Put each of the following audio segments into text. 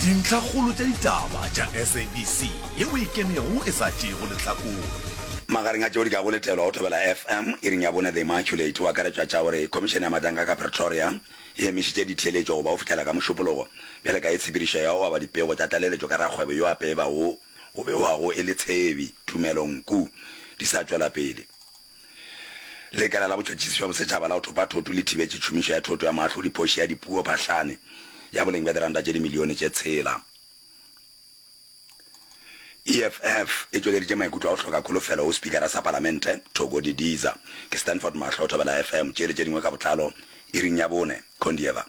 Dintlhakgolo tša ditaba tša SABC ye o e kenego e sa tšeego lehlakore. Magareng a tšeo di ka go letelwa go thobela FM iring ya bone The Immaculate o akaretšwa tša gore Khomišene ya Matanka ka Pretoria e emišitše ditheeletšo go ba go fihlela ka Mošupologo bjale ka ye tshepedišo ya go aba dipego tša tlaleletšo ka rakgwebo yo a peeba wo o bewago e le Tshebi Tumelo Nku di sa tšwela pele. Lekala la Botšhotšhisi bja Bosetšhaba la go Thopa Thoto le thibetše tšhomišo ya thoto ya moahlodiphoši ya dipuo phahlane ya boleng bja diranta tše dimilione tše tshela. EFF e tšweleditše maikutlo a go hloka kholofelo go Spikara sa Palamente, Thoko Didiza. Ke Stanford Mahlo, Thobela FM. Tše le tše dingwe ka botlalo iring ya bone. Condieva.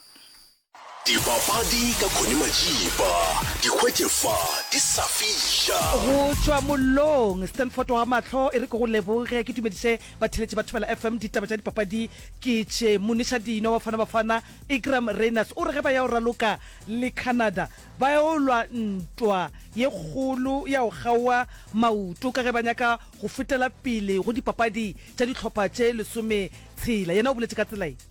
Dipapadi ka Connie Majiba, di hwetše fa di sa fiša. Go tšwa mollong, Stanford wa Mahlo e re ke go leboge, ke dumediše batheletši ba Thobela FM. Ditaba tša dipapadi ke tše, Muniša Dino, Bafana Bafana, Iqraam Rayners o re ge ba ya go raloka le Canada ba ya go lwa ntwa ye kgolo ya go kgaowa maoto ka ge ba nyaka go fetela pele go dipapadi tša dihlopha tše lesometshela. Yena o boletše ka tsela ye.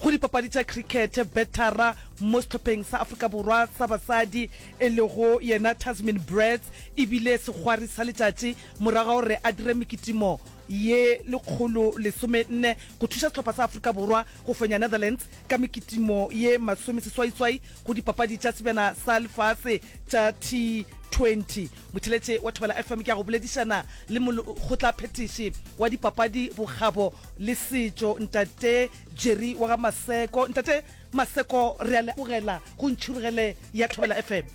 Go dipapadi tša crickete, betara mo sehlopheng sa Afrika Borwa sa basadi e lego yena Tasmin Brets e bile segwari sa letšatši morago ga gore a dire mekitimo ye lekgolo lesome nne go thuša sehlopha sa Afrika Borwa go fenya Netherlands ka mekitimo ye masome seswaiswai go dipapadi tša sebjana sa lefase tša T20. Motheletse wa Thobela FM ke a go boledišana le molekgotlaphethiši wa dipapadi, bokgabo le setšo Ntate Jerry wa ga Maseko. Ntate Maseko re a lebogela go Ntšhurugele ya Thobela FM.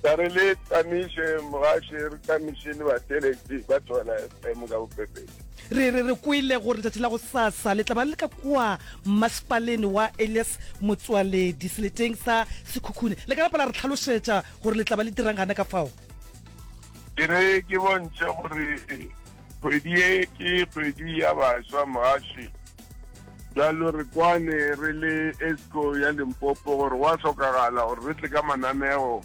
Ka re le tamiše mogaše re tamiše le batheletši ba Thobela FM ka bofefetši. Re re re kwele gore letšatši la gosasa le tla ba le ka kwa Masepaleng wa Elias Motsoaledi seleteng sa Sekhukhune. Le ka napa la re tlhalošetša gore le tla ba le dirang gana ka fao ke re ke bontšhe gore kgwedi e ke kgwedi ya baswa mogaši jalo re kwane re le esco ya limpopo gore wa tlhokagala gore re tle ka mananeo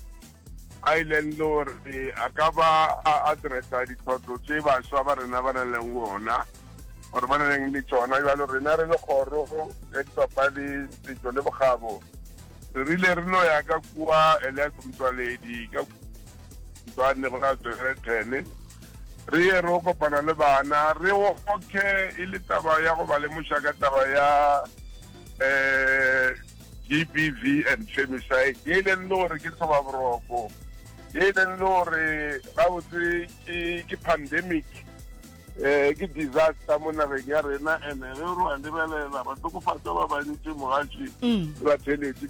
a e leng le gore a ka ba a addressa ditlhotlo tse baswa ba rena ba na leng ona gore ba na leng le tsona jalo rena re le kgoro ya dipapadi setso le bokgabo Re rile re no ya ka kua Elias Motšwaledi ka Tshwane go la Tswere Thene, re ye ro kopana le bana, re oke e le taba ya go ba lemoša ka taba ya um GBV and femicide ye e leng le gore ke tlhobaboroko ye e leng le gore gabotse ke pandemic um ke disaster mo nageng ya rena and-e ge re wa lebelela batlokofatsa ba bantši mogaši mm. ba theletše